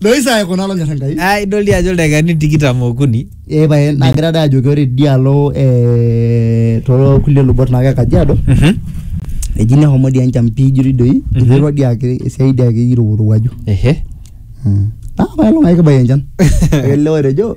loisa aikuna lonyor enkai Ah, idol dii ajo ildaikani tikitam okuni ee pae nagira dai ajoki ore dialo ee too kulie lubot naa ke kajiado eji nehomo dii enchan pii ijo doi doi Mhm. iterua dii ake esiai dii ake irowuaju ehe naa pae long'ai kibaiki enchan ele otejo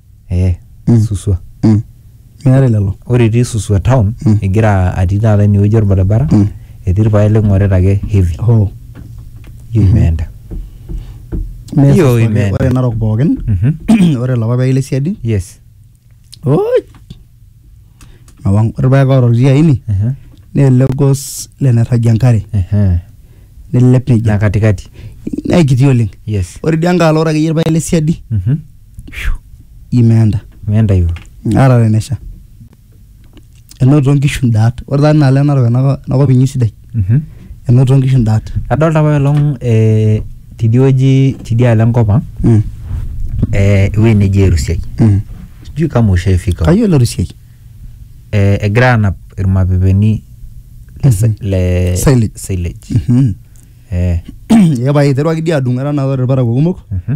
eh Mm. suswa Mm. Meetae lelo. ore etii suswa town Mm. egira atii taata inewueji orbaribara Mm. etii irpaek ling'orita ake heavy Hoo. hiyo imeenda Mee Hiyo sasa imeenda. Ore Narok pookin. Mhm. Ore lapa paek le siadi. yes Oi. Mawang. Ore paek oroti aini. Aha, Naa ele gos lenerragi enkare. aha. Nelelep na nejia. katikati Naa kiti oleng. yes Ore idia nkae alo ore akeyie irpaek le siadi. Mhm. imeenda meenda yu ara tenesha enoto nkishu ndaat ore taa inaalo enarok enako- enakop inyi sidai mhm enoto nkishu ndaat adolta apa olong eh, tidie wueji tidialo enkop ang mm. eh, ewueji neji erusiai mm. sijui kama ushaifika huko. kayiolo rusiai eh, egira anap irmapepeni le, Mhm. le Silage. silage Mhm. eh, epae iteruaki dii adung etanapa irparakuo kumok mhm.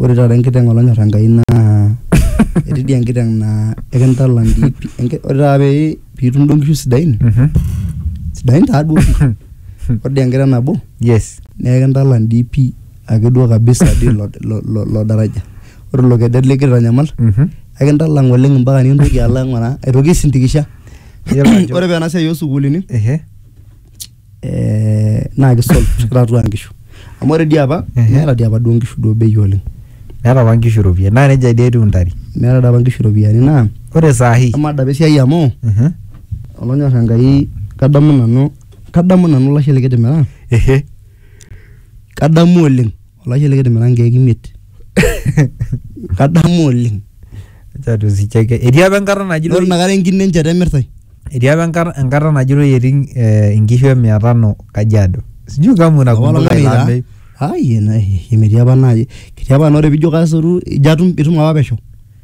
Ore taata enkiteng olonyor Enkai naa etii dii enkiteng naa ekintalam dii pi- enki- ore taata pee piitum duo nkishu sidain sidain taa duo pi ore dii enkiteng nabo Yes. naa ekintalam dii pi ake duo kabisa dii ilo lo- lo- lo daraja. Ore ilo kedet likitanyamal Mhm. ekintalam oleng mpaka nikintoki alo aing'uraa aitoki aisindikisha. Iyiolo ajo- Ore paa ena siai oo sukuulini Ehe. eh, naa kisolve shirikata atua nkishu amu ore dii apa Ehe. meeta dii apa duo nkishu duo bei oleng meeta apa nkishu iropiyiani naa nejia dii etiu intare meeta dii apa nkishu iropiyiani naa ore saa hii amaa dapa esiai amu Mhm. olonyor enkai kadamu nanu kadamu nanu olashe likitimiraka ehe kadamu oleng Olashe likitimira nkeek imiet. Kadamu oleng. Acha tusicheke. Etii apa enkata Ore najitoi inakata enkine enchata emirtai. etii apa enkata enkata najitoi etii eh, inkishu e mia tano Kajiado. Sijui kama Apa unakumbuka olameyu ilo taa. ameyu. Ai ena ai metii apa naaji. Ketii apa naa ore piijo kasotu ijo atum itum apa pesho.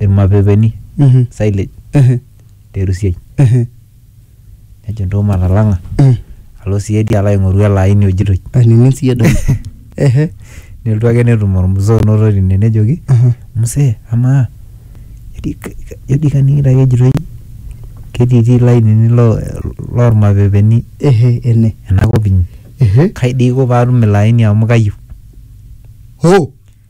irmapepeni Mhm. silage Ehe. terusiai Ehe. nejo ntoo matalang'a Mm. alo siedi alo aing'oru ele aini ojitoi Ainining siyie doi. Ehe. nelotu ake netum ormzee onoto tine nejoki Aha. mzee amaa jodi ka- ka- jodi kaning'ito ake ejitoi ketiitii ilainini lo- lormapepeni Ehe. Ene. enakop inyi Ehe. kai dei aiko paatum ilo aini amu kayieu Hoo.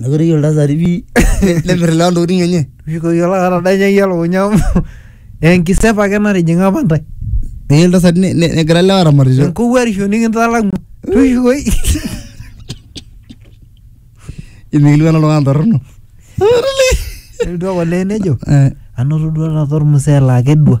Mekure eyiolo iltasati pi nemir ilewa ntokiting enye. Mishukokiki olaka otadanyie iyie elukunya amu enkisep ake natijing'a apa intae. Neyieu iltasati ne- ne- negira ilewa aramatisho. Enkowuarisho nikintalang'ua. Tushukoi. Imikilikuana oltung'ani torrono. Nelotu ake olee nejo Eh, anoto duo taata ormusee laa kedua.